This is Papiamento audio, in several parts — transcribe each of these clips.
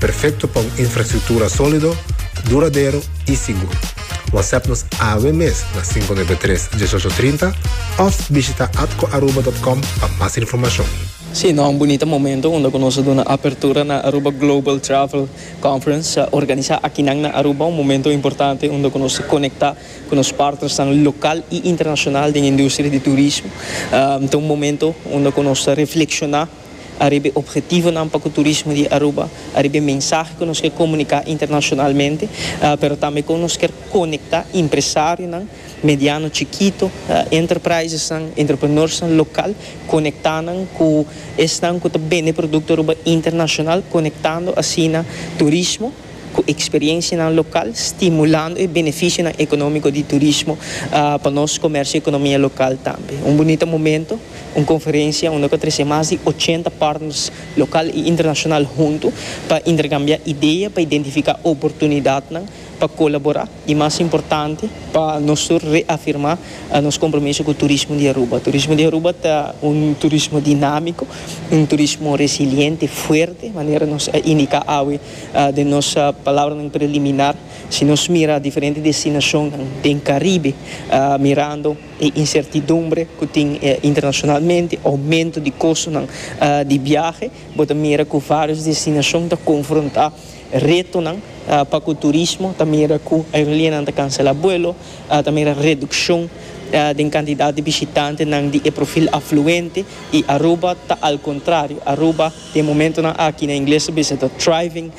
Perfecto pa un infrastructura solido, duradero y sigur. WhatsApp nos awe mes na cinco nuebe tres, dieshocho trinta of bishita atcoaruba.com pa mas informacion. Sí, nos a un bunita momento unda cu nos a duna apertura na Aruba Global Travel Conference, organisa akinan na Aruba, un momento importante unda cu nos ta conecta cu nos partnersnan local y internacional den industria di turismo. Ta un momento unda cu nos ta reflexiona. Ariba e ophetivonan pa ku turismo di Aruba, ariba e mensahe ku nos ke komuniká internashonalmente, pero tambe kon nos kier konektá impresarionan, mediano, chikito, enterprisesnan, entrepreneursnan lokal, konektá nan ku esnan ku ta bende produkto Aruba internashonal, konektando asina turismo. ku eksperiencianan lokal, stimulando e beneficionan economico di turismo pa nos comercio y economia local tambe. Un bunita momento, un conferencia unda cu a trece mas di ochenta partners local y internacional hunto pa intercambia idea, pa identifica oportunidadnan, pa colabora y mas importante pa nos tur reafirma nos compromiso cu turismo di Aruba. Turismo di Aruba ta un turismo dinamico, un turismo resiliente, fuerte, manera nos a indica awe. Den nos palabranan preliminar, si nos mira diferente destinacionnan den Caribe, mirando e incertidumbre cu tin internacionalmente, aumento di costonan di biahe, bo ta mira cu varios destinacion ta confronta retonan pa cu turismo, ta mira cu aerolineanan ta cancela buelo, ta mira reduccion den cantidad di bishitantenan di e profil afluente y Aruba ta al contrario, Aruba. Den momentonan aki na ingles ta bisa ta thriving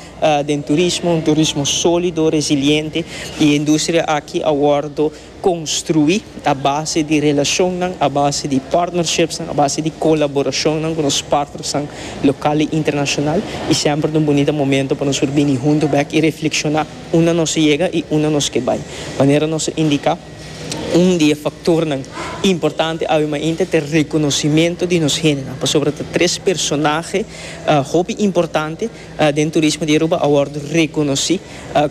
den turismo, un turismo solido, resiliente, y e industria aki a wordo construi a base di relacionnan, a base di partnerships, a base di colaboracionnan cu nos partnersnan local y internacional, y semper ta un bunita momento pa nos por bini hunto bek y reflexiona unda nos a yega y unda nos ke bay. Manera nos a indica. Un di e faktornan importante awe mainta ta e rekonosimentu di nos hendenan, pasobra ta tres personahe hopi importante den turismo di Aruba a wòrdu rekonosí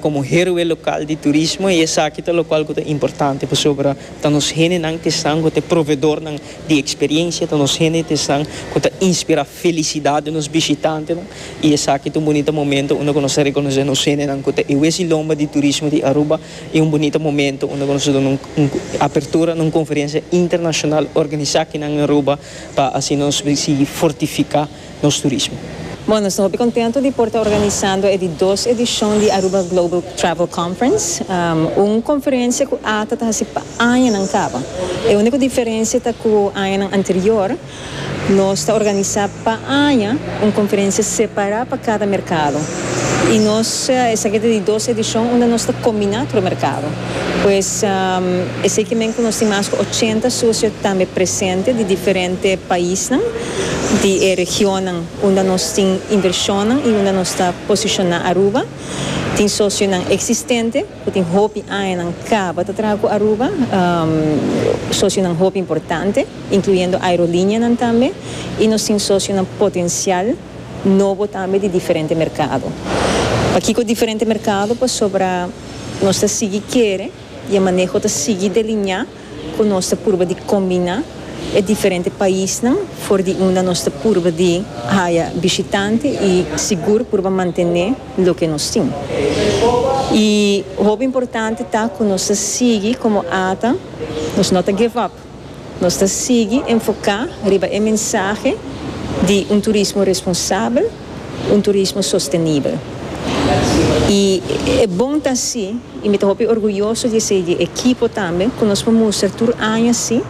komo heroe lokal di turismo i esaki ta lokual ku ta importante pasobra ta nos hendenan ku esnan ku ta e provedornan di eksperensia, ta nos hende ta esnan ku ta inspirá felisidat den nos bishitantenan i esaki ta un bunita momentu unda ku nos ta rekonosé nos hendenan ku ta e wesi lomba di turismo di Aruba. I un bunita momento unda ku nos a duna un apertura na un konferensia internashonal organisa aki nan in Aruba pa asina nos por sigui fortifiká nos turismo. Bon, nos ta hopi kontentu di por ta organisando e di dos edishon di Aruba Global Travel Conference, un konferensia ku Ata ta hasi pa añanan kaba. E úniko diferensia ta ku añanan anterior, Nos ta organisá pa aña un konferensia separá pa kada merkado i nos esaki ta di dos edishon unda nos ta kombiná tur merkado. Pues esei ke men ku nos tin mas ku ochenta sosio tambe presente di diferente paisnan di e regionnan unda nos tin invershonnan i unda nos ta posishoná Aruba. Tin sosionan eksistente ku tin hopi añanan kaba ta traha ku Aruba, sosionan hopi importante. incluyendo aerolineanan tambe, y nos tin socionan potencial nobo tambe di diferente mercado. Pakico diferente mercado? Pasobra nos ta sigui kere y e maneho ta sigui deliña cu nos ta purba di combina e diferente paisnan for di unda nos ta purba di haya bishitante y sigur purba mantene loke nos tin. Y hopi importante ta cu nos ta sigui como ata, nos no ta give up. Nos ta sigui enfoká riba e mensahe di un turismo responsabel, un turismo sostenibel. I e bon ta así i mi ta hopi orguyoso di esei di e ekipo tambe ku nos por mustra tur aña sí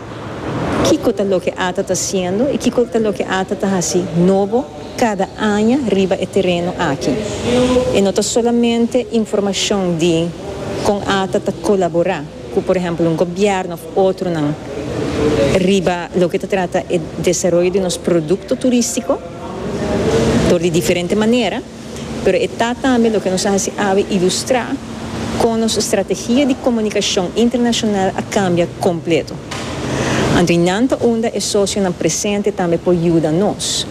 kiko ta loke ata ta hasiendo i kiko ta loke ata ta hasi nobo kada aña riba e tereno aki. E no ta solamente informashon di kon ata ta kolaborá. cu por ehemplo un gobierno of otronan riba loke ta trata e desaroyo di nos producto turistico dor di diferente manera, pero e ta tambe loke nos a haci awe ilustra con nos strategia di comunicacion internacional a cambia completo. Anto y nan ta unda e socionan presente tambe por yuda nos.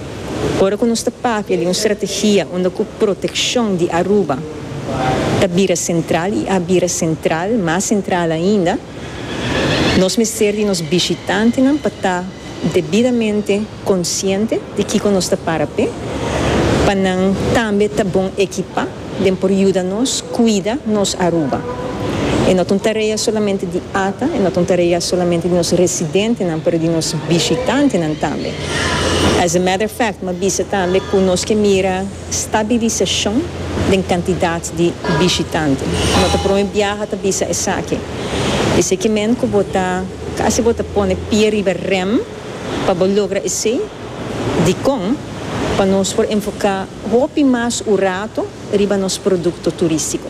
Ora cu nos ta papia di un strategia unda cu proteccion di Aruba, ta bira sentral i a bira sentral, mas sentral ainda, nos mester di nos bishitantenan pa ta debidamente konsiente di kiko nos ta para p'e, pa nan tambe ta bon ekipá den por yuda nos kuida nos Aruba. E no ta un tarea solamente di ata, e no ta un tarea solamente di nos residentenan, pero di nos bishitantenan tambe. As a matter of fact, mi a bisa tambe ku nos ke mira. Stabilisacion den cantidad di bishitante. No ta prome biaha ta bisa esaki. Eseki men cu bo ta casi bo ta pone pie riba rem pa bo logra esey, dicon pa nos por enfoca hopi mas un rato riba nos producto turistico.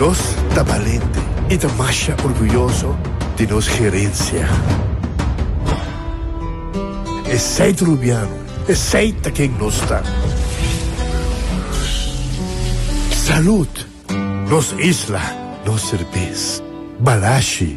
Nos ta balente i ta masha orguyoso di nos herensia. Esei ta rubiano, esei ta ken nos ta. Salud! Nos isla, nos serbes. Balashi!